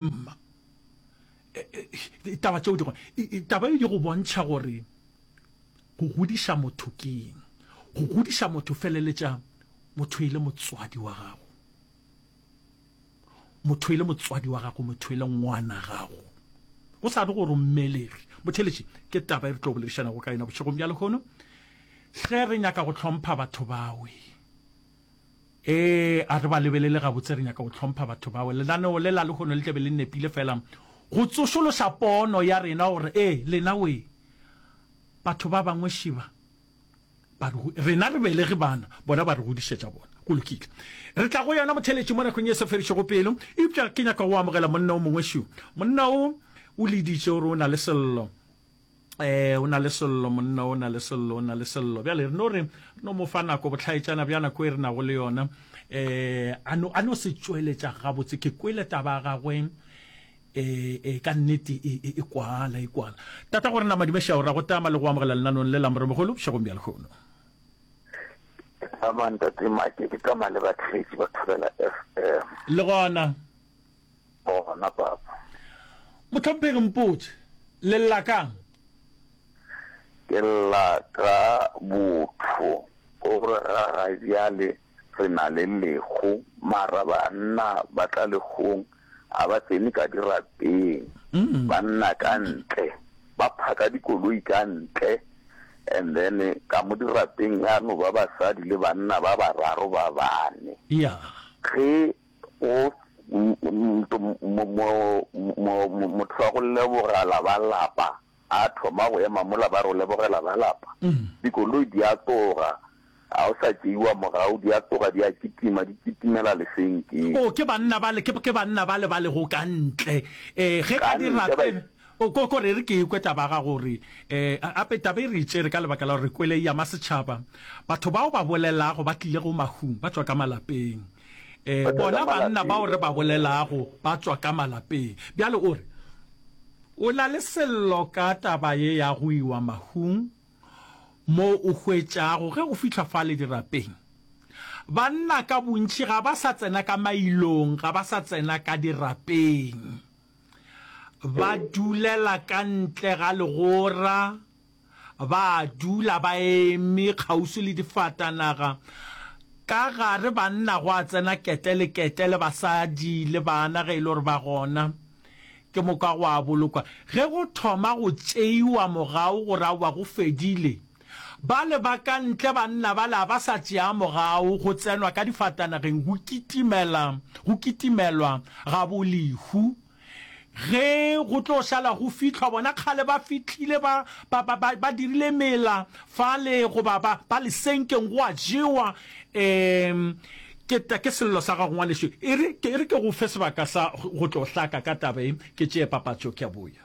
Mma, taba tšeo di gona. Taba e di go bontšha gore go godiša motho ke eng. Go godiša motho feleletša motho e le motswadi wa gago. Motho e le motswadi wa gago, motho e le ngwana gago. Go sa re gore o mmelegi. Motheeletši, ke taba e re tlo boledišanago ka yona bošegong bja lehono. Ge re nyaka go hlompha batho bawe. Ee, a re ba lebelele gabotse, re nyaka go hlompha batho bao. Lenaneo le la lehono le tla be le nepile feela go tsošološa pono ya rena gore, ee, lena we, batho ba bangwe šiba ba re, rena re belege bana, bona ba re godišetša bona. Go lokile. Re tla go yona motheeletši mo nakong e sa fedišego pelo. Eupša ke nyaka go amogela monna o mongwe šo. Monna o, o le ditše gore o na le sello. eh o na le sello monna o na le sello o na le sello bjale re no re no mo fa nako botlhaetšana bja nako e re nago le yona eh a no a no se tšweletša gabotse ke kwele taba gagwe eh eh ka nnete e, e, e kwala e kwala tata gore na madimešao ra go tama le go amogela lenanong le lamore mogolo bošegong bja lekgono amanta tse make ke tama le batlhetsi ba thobela fm le gona Bona, Papa. Mohlomphegi Mpotše, le lla ka'ng? Ke lla ka botho. O re, Ga ga bjale re na le lekgo, mara banna ba tla lekgong ga ba tsene ka dirapeng, ba nna ka ntle, ba phaka dikoloi ka ntle, and then ka mo dirapeng ga no ba basadi le banna ba bararo ba bane. Ge O, motho wa go lebogela ba lapa a thoma go ema mola ba re o lebogela ba lapa, dikoloi di a tloga, ga o sa tšeiwa morago, di a tloga di a kitima, di kitimela lefenkeng. O, ke banna bale, ke, ke banna bale ba lego ka ntle, um, ge ka di rapela. O, ko, ko re re ke ekwe taba ya gago gore, um, gape taba e re e tšere ka lebaka la gore re kwele e ama setšhaba. Batho bao ba bolelago ba tlilego mahung ba tšwa ka malapeng. E, bona banna bao re ba bolelago ba tšwa ka malapeng. Bjale o re, O na le sello ka taba ye ya go iwa mahung, mo o hwetšago ge o fihla fale dirapeng, banna ka bontši ga ba sa tsena ka mailong, ga ba sa tsena ka dirapeng. Ba dulela ka ntle ga legora. ba dula ba eme kgauswi le difatanaga. Ka gare banna gwa tsena kete le kete le basadi le bana ge e le gore ba gona. Ke moka gwa bolokwa. Ge go thoma go tšeiwa mogau gore aowa go fedile, bale ba ka ntle banna bale a ba sa tšea mogau, go tsenwa ka difatanageng go kitimela, go kitimelwa ga bo Lehu. Ge go tlo šala go fihlwa bona, kgale ba fihlile, ba, ba, ba, ba, ba dirile mela fale, goba ba, ba lesenkeng, go a jewa. Um, ke, ta, ke sello sa gago, ngwanešu. E re, ke, e re ke go fe sebaka sa go tlo hlaka ka taba ye, ke tšee papatšo, ke a boya.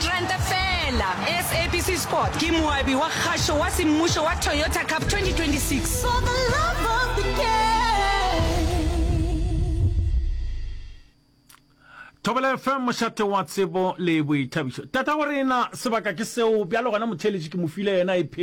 Ranta feela. SABC Sport ke moabi wa kgašo wa semmušo wa Toyota Cup 2026. For the love of the game. Thobela FM mošate wa tsebo le boithabišo. Tatago rena sebaka ke seo bjalo gona motheeletši ke mo file yena e phela.